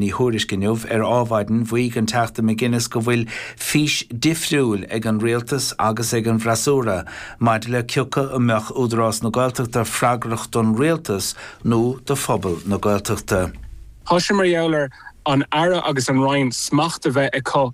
I dThuairisc inniu. Ar Adhmhaidin mhaígh an Teachta McGuinness go bhfuil fís difriúil ag an Rialtas agus ag an bhfreasúra maidir le cé acu an mbeadh Údarás na Gaeltachta freagrach don Rialtas nó do phobal na Gaeltachta. Tá sé mar gheall ar an Aire agus an Roinn smacht a bheith acu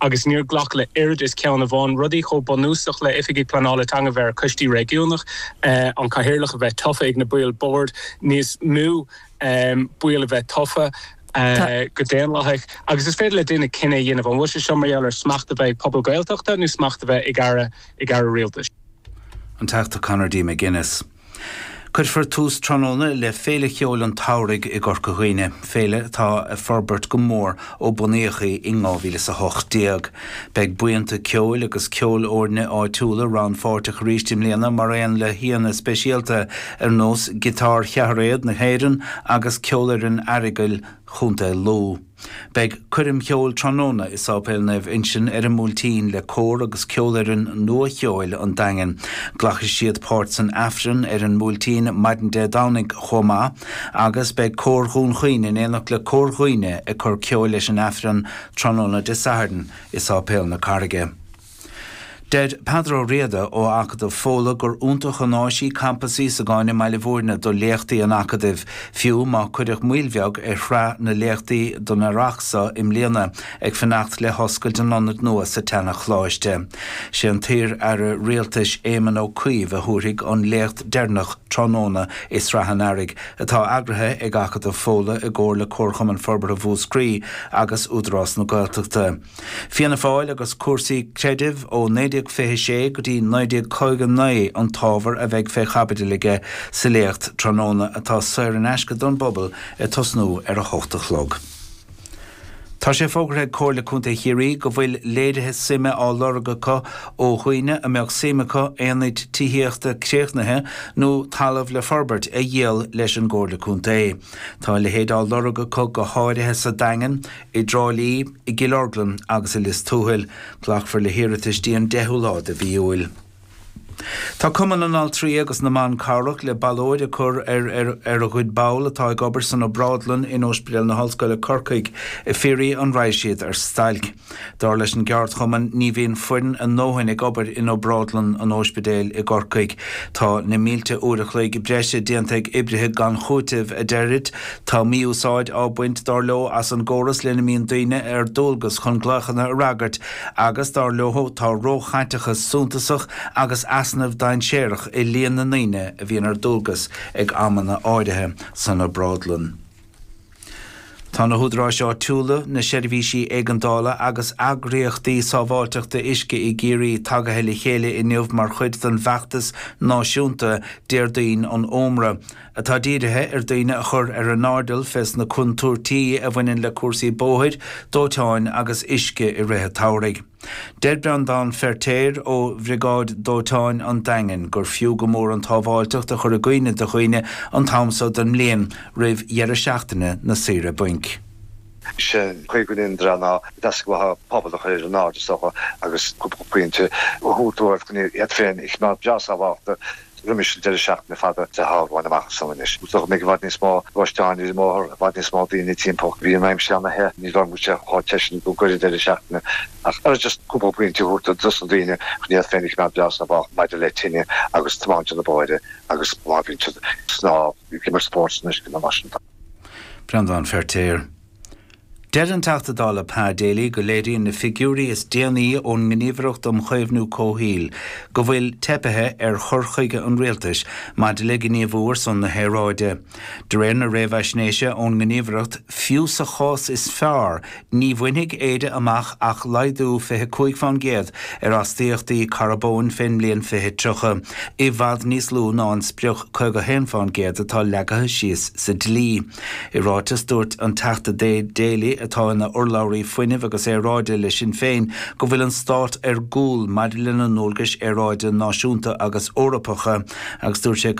agus níor glacadh le oiread is ceann amháin, rudaí chomh bunúsach le Oifigigh Pleanála Teanga bheith ar Choistí Réigiúnach, an Cathaoirleach a bheith tofa ag na baill Boird níos mó, baill a bheith tofa go daonlathach agus is féidir le duine cinneadh a dhéanamh an bhfuil sé seo mar gheall ar smacht a bheith ag pobal Gaeltachta nó smacht a bheith ag Aire Rialtais. An Teachta Conor D. McGuinness. Cuirfear tús tráthnóna le Féile Cheoil an tSamhraidh i gCorca Dhuibhne, féile atá ag forbairt go mór ó bunaíodh í in 2018. Beidh buíonta ceoil agus ceolfhoirne áitiúla rannpháirteach arís i mbliana mar aon le haíonna speisialta ar nós Giotár Cheathairéad na hÉireann agus Ceolfhoireann Aireagail Chontae Lú. Beidh coirm cheoil tráthnóna i Sáipéal Naomh Uinsinn ar an mBuailtín le Cór agus Ceolfhoireann Nua Cheoil an Daingin. Glacfaidh siad páirt san Aifreann ar an mBuailtín maidin Dé Domhnaigh chomh maith agus beidh Cór Dhún Chaoin in éineacht le Cór Dhuibhne ag cur ceoil leis an Aifreann tráthnóna Dé Sathairn i Sáipéal na Carraige. Deir Peadar Ó Riada ó Acadamh Fódhla gur iontach an áis í Campas Íosagáin i mBaile Mhúirne do léachtaí an Acadaimh, fiú má cuireadh moill bheag ar shraith na léachtaí don Earrach so i mbliana ag fanacht le hoscailt an ionaid nua sa tseana-Choláiste. Sé an t-iar-Aire Rialtais Éamon Ó Cuív a thabharfaidh an léacht deireanach tráthnóna i Sraith an Earraigh, atá eagraithe ag Acadamh Fódhla i gcomhar le Comharchumann Forbartha Mhúscraí agus Údarás na Gaeltachta. Fianna Fáil agus cúrsaí creidimh ó 1926 go dtí 1959 an t-ábhar a bheidh fé chaibidil aige sa léacht tráthnóna atá saor in aisce don bpobal ag tosnú ar a hocht a chlog. Tá sé fógartha ag Comhairle Contae Chiarraí go bhfuil léirithe suime á lorg acu ó dhaoine a mbeadh suim acu aonaid tithíochta críochnaithe nó talamh le forbairt a dhíol leis an gComhairle Contae. Tá a leithéid á lorg acu go háirithe sa Daingean, i dTrá Lí, i gCill Orglan agus i Lios Tuathail. Glacfar le hiarratais dtí an 10ú lá de mhí Iúil. Tá Cumann na nAltraí agus na mBan Cabhrach le ballóid a cur ar ar a gcuid ball atá ag obair san obrádlann in Ospidéal na hOllscoile i gCorcaigh ag fiafraí an raghadh siad ar stailc. Dar leis an gceardchumann ní bhíonn foireann a ndóthain ag obair in obrádlann an ospidéil i gCorcaigh. Tá na mílte uair a chloig breise déanta ag oibrithe gan chúiteamh a deirid Tá mí-úsáid á bhaint, dar leo, as an gcóras lena mbíonn daoine ar dualgas chun glaochanna a fhreagairt agus, dar leo, tá róchaiteachas suntasach agus easnamh dainséarach i líon na ndaoine a bhíonn ar dualgas ag amanna áirithe san obrádlann. Tá na hÚdaráis Áitiúla, na Seirbhísí Éigeandála agus eagraíochtaí sábháilteachta uisce i gCiarraí tagaithe le chéile inniu mar chuid den bhfeachtas náisiúnta Déardaoin an Ómra, atá dírithe ar daoine a chur ar a n-airdeall fés na contúirtí a bhaineann le cúrsaí bóthair, dóiteáin agus uisce i rith an tsamhraidh. Deir Breandán Feirtéar ó Bhriogáid Dóiteáin an Daingin gur fiú go mór an tsábháilteacht a chur i gcuimhne do dhaoine an t-am seo den mbliain, roimh dheireadh seachtaine na saoire bainc. Is é an chúis go ndéanann dreamanna ná deasca uathu an pobal a chur ar a n-aire is dócha agus cúpla pointe a thabhairt dóibh chun iad féin a choimeád breá sábháilte Roimis an deireadh seachtaine fada atá romhainn amach san anois, cífimid i bhfad níos mó gluaisteáin ar an mbóthar, i bhfad níos mó daoine timpeall. Bhí an aimsir ana the, ní bheidh sé chomh te sin i gcomhair an deireadh seachtaine ach just cúpla pointe a thabhairt dos na daoine chun iad féin a choimeád breá sábháilte maidir le tine agus tiomáint na bóithre agus má bhíonn siad ag snámh, ag imirt spóirt san uisce nó mar sin. Breandán Feirtéar. Deir an Teachta Dála Pa Daly go léiríonn na figiúirí is déanaí ón nGníomhaireacht um Chaomhnú Comhshaoil go bhfuil teipithe ar chur chuige an Rialtais maidir le gníomhú ar son na haeráide. De réir na réamhaisnéise ón nGníomhaireacht, fiú sa chás is fearr, ní bhainfidh Éire amach ach laghdú 25 fán gcéad ar astaíochtaí carbóin fén mbliain 2030, i bhfad níos lú ná an sprioc 51 fán gcéad atá leagtha síos sa dlí. I ráiteas, dúirt an Teachta Daly, atá ina urlabhraí Fuinnimh agus Aeráide le Sinn Féin, go bhfuil an Stát ar gcúl maidir lena ndualgais aeráide náisiúnta agus Eorpacha agus dúirt sé,